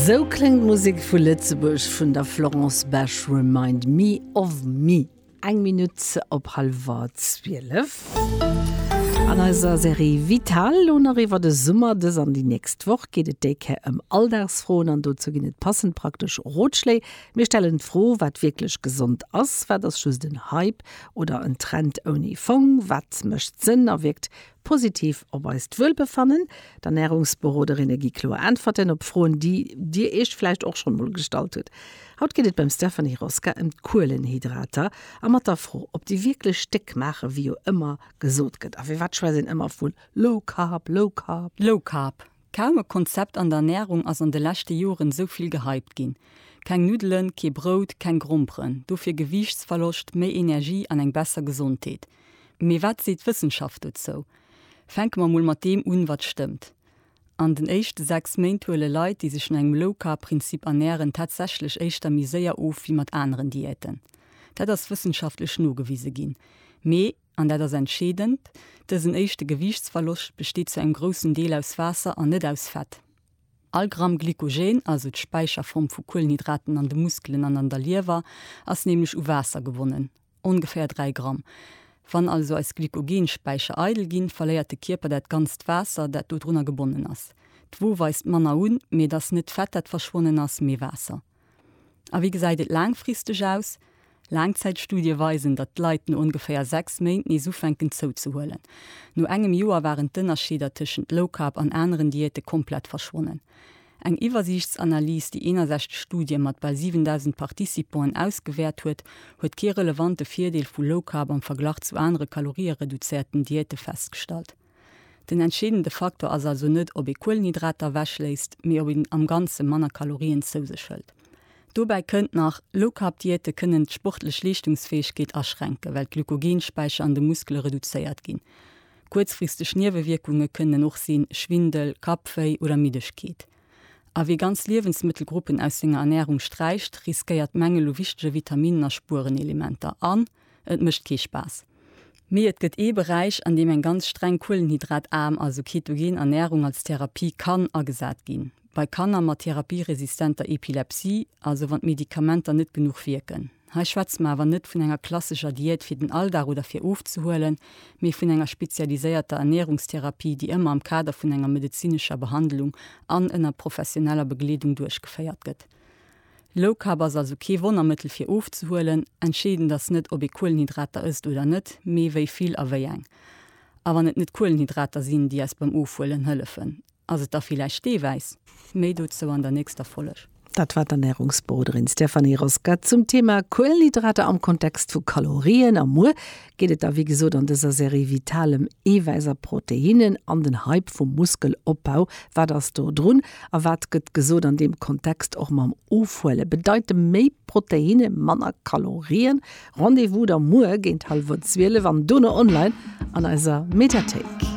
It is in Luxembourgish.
Sou kléngt d'Musek vu Lëtzebuerg vun der Florence Besch, Remind me of me. Eng Minutt op hallwer zwielef. An eiser Serie Vital lo nach iwwer de Summer. Dës an déi nächst Woch geet et déi Kéier ëm Alldagsfroen an dozou ginn et passend praktesch Rotschléi. Mir stellen d'Fro, wat wierklech gesond ass, wat ass just en Hype oder en Trend ouni Fong, wat mécht Sënn a wierkt Positiv op eist Wuelbefannen, D'Ernärungsberoderinne gi kloer Äntwerten op Froen, déi Dir Iech vläicht och schonn emol gestallt hutt. Haut geet et beim Stephanie Roska ëm d'Kuelenhydrater a mat der Fro, ob déi wierklech déck maachen, wéi jo ëmmer gesot gëtt. A firwat schwätzt een ëmmer vu Low Carb, Low Carb? Low Carb, kaum e Konzept an der Ernärung ass an de leschte Joren esou vill gehypt ginn. Keng Nuddelen, kee Brout, keng Gromperen, dofir Gewiichtsverloscht, méi Energie an eng besser Gesondheet. Mee wat seet d'Wëssenschaft dozou? Fänke mer mol mat deem un, wat stëmmt. An den éischte 6 Méint huele Leit, déi sech no engem Low-Carb-Prinzip ernären, tatsächlech éischter méi séier of wéi mat aneren Diäten. Dat ass wëssenschaftlech nogewise ginn. Mee, an dat ass entscheedend, dësen éischte Gewiichtsverloscht besteet zu engem groussen Deel aus Waasser an net aus Fett. All Gramm Glykogen, also d'Späicherform vu Kuelenhydraten an de Muskelen an an der Liewer, ass nämlech u Waasser gebonnen. Ongeféier 3 Gramm. Wann also eis Glykogen-Späicher eidel ginn, verléiert de Kierper dat ganzt Waasser, dat dodrunner gebonnen ass. D'Wo weist manner un, mee et ass net d'Fett, dat verschwonnen ass, mee Waasser. A wéi gesäit et laangfristeg aus? Laangzäitstudie weisen, datt d'Leit no ongeféier 6 Méint nees ufänken zouzehuelen. No engem Joer waren d'Ënnerscheeder tëschent Low Carb an aneren Diäte komplett verschwonnen. Eng Iwwersiichtsanalys, déi 61 Studie mat bal 7.000 Participanten ausgewäert huet, huet kee relevante Virdeel vu Low Carb am Verglach zu anere kaloriereduzéierten Diäte festgestallt. Den entscheedende Faktor ass also net, ob ee Kuelenhydrater ewechléisst, mee ob een am Ganze manner Kalorien zou sech hëlt. Dobäi kënnt nach, Low Carb Diäte kënnen d'sportlech Leeschtungsfäegkeet aschränken, well d'Glykogen-Späicher an de Muskele reduzéiert ginn. Kuerzfristeg Niewewierkunge kënnen och sinn, Schwindel, Kappwéi oder Middegkeet. A wie ganz Liewensmëttelgruppen aus senger Ernärung sträicht, riskéiert Mängel u wichtege Vitaminnen a Spuerenelementer an et mécht kee Spaass. Mee et gëtt ee Beräich, an deem eng ganz streng kuelenhydrataarm, also ketogen Ernärung als Therapie kann agesat ginn, bei Kanner mat therapieresistenter Epilepsie, also wann d'Medikamenter net genuch wierken. Hei schwätze mer awer net vun enger klassescher Diät fir den Alldag oder fir ofzehuelen, mee vun enger spezialiséierter Ernährungstherapie, déi ëmmer am Kader vun enger medezinescher Behandlung an ënner professioneller Begleedung duerchgeféiert gëtt. Low Carb ass also kee Wonnermëttel fir ofzehuelen. Entscheedend ass net, ob ee Kuelenhydrater ësst oder net, mee wéi vill a wéi eng. A wann et net d'Kuelenhydrater sinn, déi eis beim Ofhuelen hëllefen, Ass et da villäicht dee wäiss? Méi dozou an der nächster Folg. Dat war d'Ernärungsberoderin Stéphanie Rosca zum Thema Kuelenhydrater am Kontext vu Kalorien. A muer geet et da wéi gesot an dëser Serie Vitalem, Eewäiss a Proteinnen an den Hype vum Muskelopbau. Wat ass do drun a wat gëtt gesot an deem Kontext? Och mam Ofhuele bedeite méi Proteinne manner Kalorien. Rendez-vous da muer géint hallwer 12 an dono online an eiser Mediathéik.